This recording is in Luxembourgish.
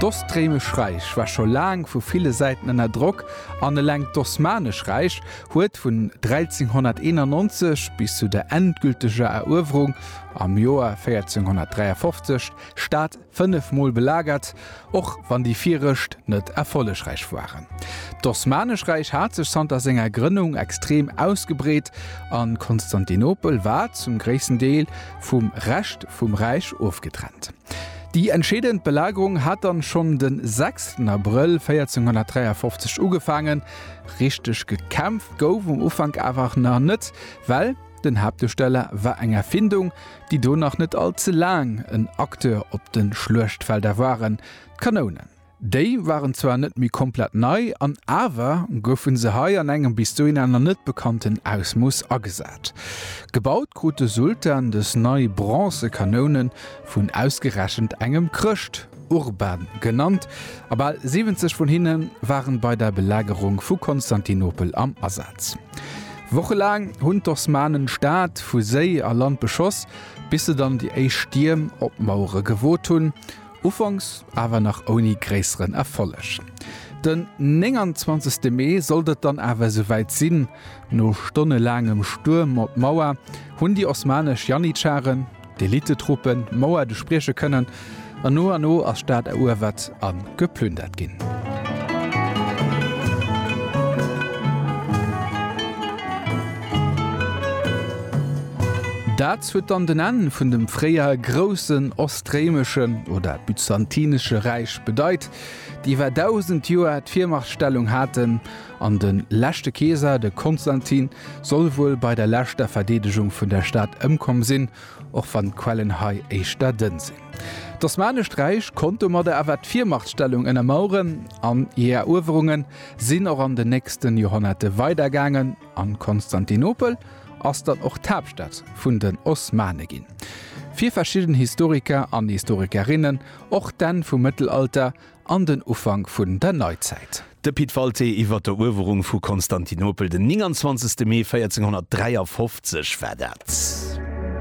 D'Ostréimesch Räich war scho laang vu ville Säiten ënner Drock an eleng d'Osmanesch Räich huet vun 1391 bis zu der endgülteger Eruewerung am Joer 1453 d'Stad fënnef Mol belagert, och wann déi virecht net erfollegräich waren. D'Osmanesch Räich hat sech zanter senger Grënnung extrem ausgebreet a Konstantinopel war zum gréissten Deel vum Rescht vum Räich ofgetrennt. Déi entscheedend Belagerung hat dann schonn de 6 Abrëll 1453 ugefaangen. Richteg gekämpft gouf um Ufank awer nach net, well den Haaptusteller war eng Erfindung, déi do nach net all ze laang en Acteur op de Schluechtfelder waren, d'Kanounen. Déi waren zwar net méi komplett nei, an awer goufe se hei an engem bis dohin aner net bekannten Ausmooss agesat. Gebaut krut de Sultan dës nei bronze Kanounen vun ausgerechent engem Chrëscht, Urban genannt, a bal 70 vun hinne waren bei der Belagerung vu Konstantinopel am Asaz. Wochelaang hunn d'Osmanen d'Stad vu Séi a Land beschoss, bis se dann déi éischt Stierm op d'Mauere gewot hunn. Ufanks awer nach ouni gréisseren Erfolleg. Den 29 Mee sollt et dann awer esouwäit sinn, No stonnelaangem Stuerm op d'Mauer hunn déi osmanesch Janitscharen, d'Elite-Truppen, d'Mauer duerchbrieche kënnen, an no an no ass d'Stad eruewert a geplündert ginn. Dat huet dann den Enn vun dem fréier groussen. D'réimesche, oder byzantinesche Räich bedeit, déi iwwer 1000 Joer d'Virmachtstellung haten, an de leschte Keeser, de Konstantin, soll wuel bei der leschter Verdeedegung vun der Stad ëmkomm sinn, och wann d'Quellen hei éischter dënn sinn. D'Osmanescht Räich konnt domadder awer d'Virmachtstellung ënnermaueren, an hir Eruewerunge sinn och an den nächste Joerhonnerte weidergaangen. An Konstantinopel ass dann och d'Haaptstad vun den Osmane ginn. Fir verschidden Historiker an Historikerinnen och d'Enn vum Mëttelalter an den Ufank vun der Neizäit. De Pit Walté iwwer d'Eruewerung vu Konstantinopel, den 29 Mee 1453 war dat.